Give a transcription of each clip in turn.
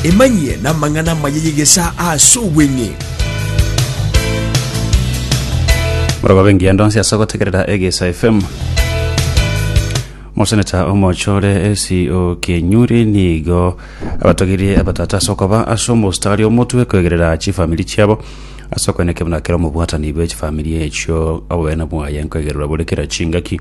Emanyie namang'ana amaya y'egesaa aase obweng'e. Morogobe engiya ndonsi ase ogotegerera Egesa FM. Moseneta omochore esi okenyuri nigo abatogirie abatata ase okoba ase omostari omotwe kwegerera chifamiri chiabo ase okoeneka buna kera omobwatani bwe chifamiri echio obogene bwaye nkoegererwa bore kera chingaki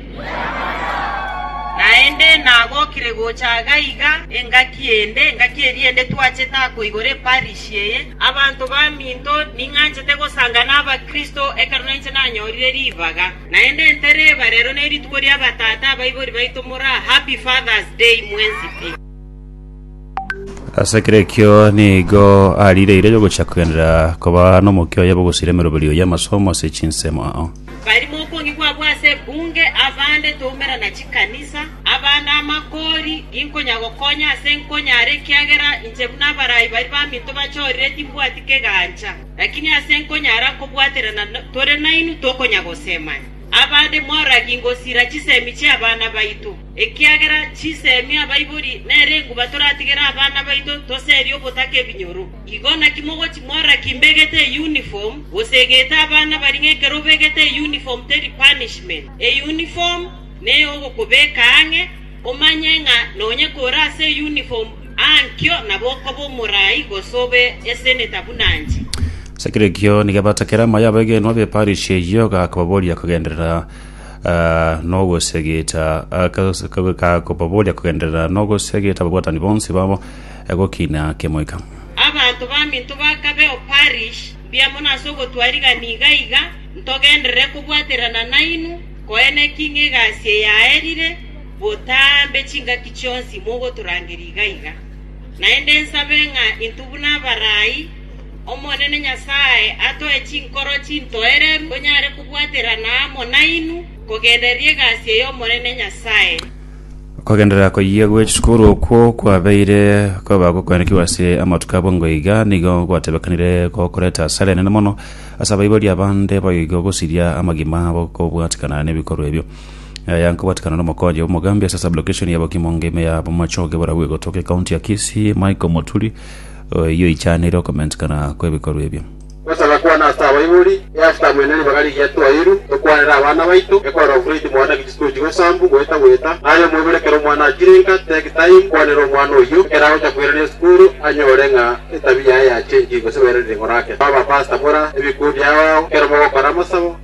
Naende nagokire gocha iga iga engaki ende, engaki eria ende twachete ako igoro eparishi eye. Abanto baminto, ning'anchete gosanga n'Abakristo ekero nainche nanyorire ribaga. Naende ntereba, rero nerituko ri'abatata abaibori baito moraa, Happy Father's Day mwensi pi. Ase ekero ekio nigo arireire yogochia kogenderera koba nomokia oye bw'ogosira emeroberi oye amasomo ase chinsemo ao. Barimo okwongi kwabo ase ebunge, abande toumera na chikanisa, abande amakori, ginkonya gokonya ase nkonyare, ekiagera inche buna abarai baria baminto bachorire timbwati kegancha. Lakini ase nkonyara kobwaterana tore nainwe tokonya gosemania. Abande moragie ngosira chisemi chi'abana baito. Ekiagera chinsemi abaibori nere enguba toratigere abana baito toserie obotaka ebinyoro. Igo naki mogochi mora kimbegete euniform, gose egete abana baria ng'ekero obegete euniform teri punishment. Euniform neyogokobeka ang'e, omanye ng'a nonye kore ase euniform aa nkio nabo okoba omorai gose obe eseneta buna inche. Ase kera ekio nigo abatakera amaye abaegenwa b'eparish eyio, akababoria kogenderera Ah, nogosegeta kakobaboria kogenderera nogosegeta ababwatani bonsi babo eh, gokina kemoika. Abanto baminto bakabe o parish mbuya mono ase ogotwarigana iga iga, ntogenderere kobwaterana nainwe, koene ki ng'a egasi eyaerire botambe chingaki chionsi mogotorangeria iga iga. Naende nsabe ng'a intwe buna abarai, Omonene Nyasae atoe chinkoro chintoereru tonyare kobwaterana amo nainwe, kogenderera egasi ey'Omonene Nyasae.” Kogenderera koyia gwe chisukuru okwo kwabeire koba gokwenekigwa ase amatuko abwo ngo iga nigo gwatebekanire gokoreta asara enene mono ase abaibori abande bayo igo gosiria amagima abo kobwatikana nebikorwa ebio. Aya nkobwatikana n'omokonyi bw'omogambi ase sublocation ya Bokimo ngeme ya Bomachoge borabwo egotoka ekaunti ya Kisii Michael Moturi Oyio oichanire okomenchekana kw'ebikorwa ebio. Gosaga kwane ase abaibori, e ase tamu ene ribaga rigiya twairu, tokwanera abana baito, ekorora ofureti mwane ki chisiko chigo sambu, goeta goeta, naye omoibori ekero omwana achirenka, take time, kwanera omwana oyio, ekero agocha koirana esukuru, anyore ng'a etabi yaye yachengi, gose bairanire ng'orake. Abapasta mora ebikundi ao ao, ekero mogokora amasabo,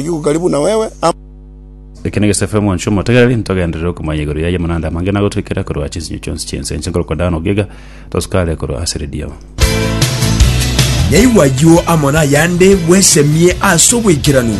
Oyio gokari buna wewe, ama. Eke negesafe omwancho omotegereri, ntogenderere okomanya igoro yaye amanande amange na gotoikera korwa chinsinyo chionsi chi'ense. Inche nkorokwa Dano Ogiga, tosukare korwa ase redio. Nyaigwa ayio amo nayande bwesemie ase obwaikeranu.